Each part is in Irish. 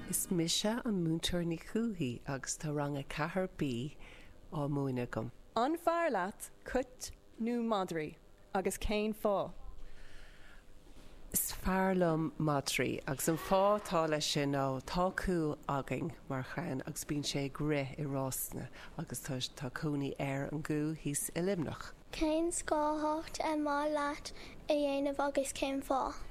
Is mise an Múinteoir Ní Chuathaigh agus tá Rang 4B á múineadh agam. An fearr leat cait nó madraí agus cén fáth? Is fearr liom madraí agus an fáth atá leis sin ná tá cú againn mar chlann agus bíonn sé ag rith i rásanna agus tá tá cónaí ar an gcú thíos i Luimneach. Cén sárchumhacht ar mhaith leat a dhéanamh agus cén fáth?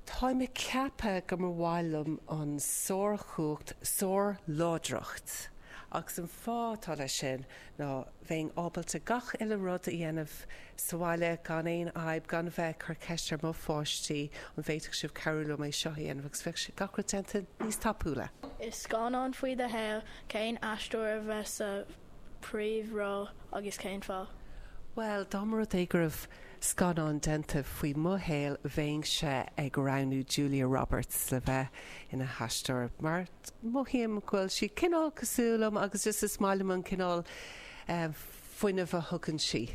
Tá mé ag ceapadh go mba mhaith liom an sárchumhacht, sárláidreacht, agus an fáth atá leis sin ná bheinn ábalta gach uile rud a dhéanamh sa bhaile gan aon fhadhb, gan a bheith ag cur ceiste ar mo pháistí, an bhféadfadh sibh cabhrú liom é seo a dhéanamh, agus bheadh sé, gach rud déanta níos tapúla. I scannán faoi do shaol, cén aisteoir a bheas sa príomhról agus cén fáth? Bhuel, dá mba rud é go raibh scannán déanta faoi mo shaol bheinnse ag roghnú Julia Roberts le bheith ina haisteoir mar mothaím go bhfuil sí cineál cosúil liom agus just is maith liom an cineál fuinnimh a thugann sí.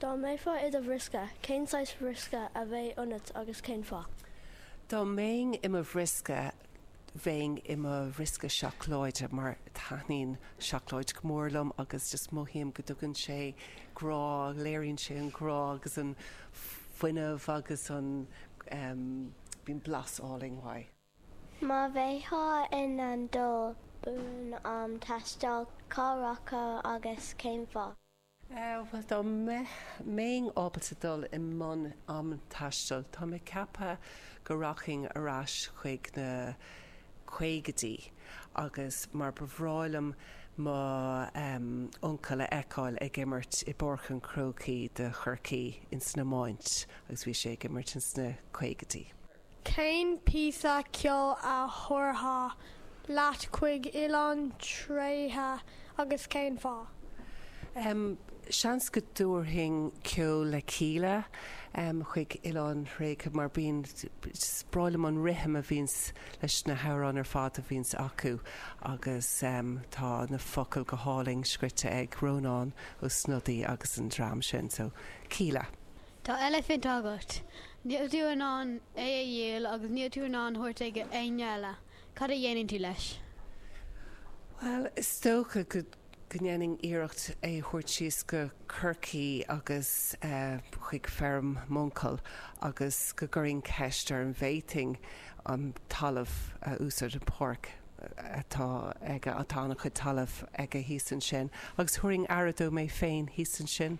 Dá mbeifeá i do bhriosca, cén saghas briosca a bheadh ionat agus cén fáth? Dá mbeinn i mo bhriosca, bheinn i mo bhriosca seacláide mar taitníonn seacláid go mór liom agus just mothaím go dtugann sé grá, léiríonn sé an grá agus an fuinneamh agus an em bíonn blas álainn uaidh. Má bheifeá in ann dul i mbun am taistil, cá rachfá agus cén fáth? Bhuel, dá mbeinn ábalta dul i mbun am taistil, tá mé ag ceapadh go rachainn ar ais chuig na caogaidí agus mar ba bhreá liom mo uncail a fheiceáil ag imirt i bPáirc an Chrócaigh do Chorcaigh ins an iomáint agus bhí sé ag imirt ins na caogaidí. Cén píosa ceoil a thabharfá leat chuig oileán tréigthe agus cén fáth? Seans go dtabharfainn ceol le Kíla chuig oileán tréigthe mar bíonn, is breá liom an rithim a bhíonn leis na hamhráin ar fad a bhíonns acu agus tá na focail go hálainn scríte ag Rónán Ó Snodaigh agus an dream sin so Kíla. Tá eilifint agat. Níl tú in ann é a dhíol agus níl tú in ann é a thabhairt ag éinne eile. Cad a dhéanann tú leis? Bhuel, is dócha go ndéanfainn iarracht é a thabhairt síos go Corcaigh agus chuig feirm m'uncail agus go gcuirfinn ceist air an bhféadfainn an talamh a úsáid, an páirc atá aige, tá an-chuid talaimh aige thíos ansin, agus thabharfainn aire dó mé féin thíos ansin.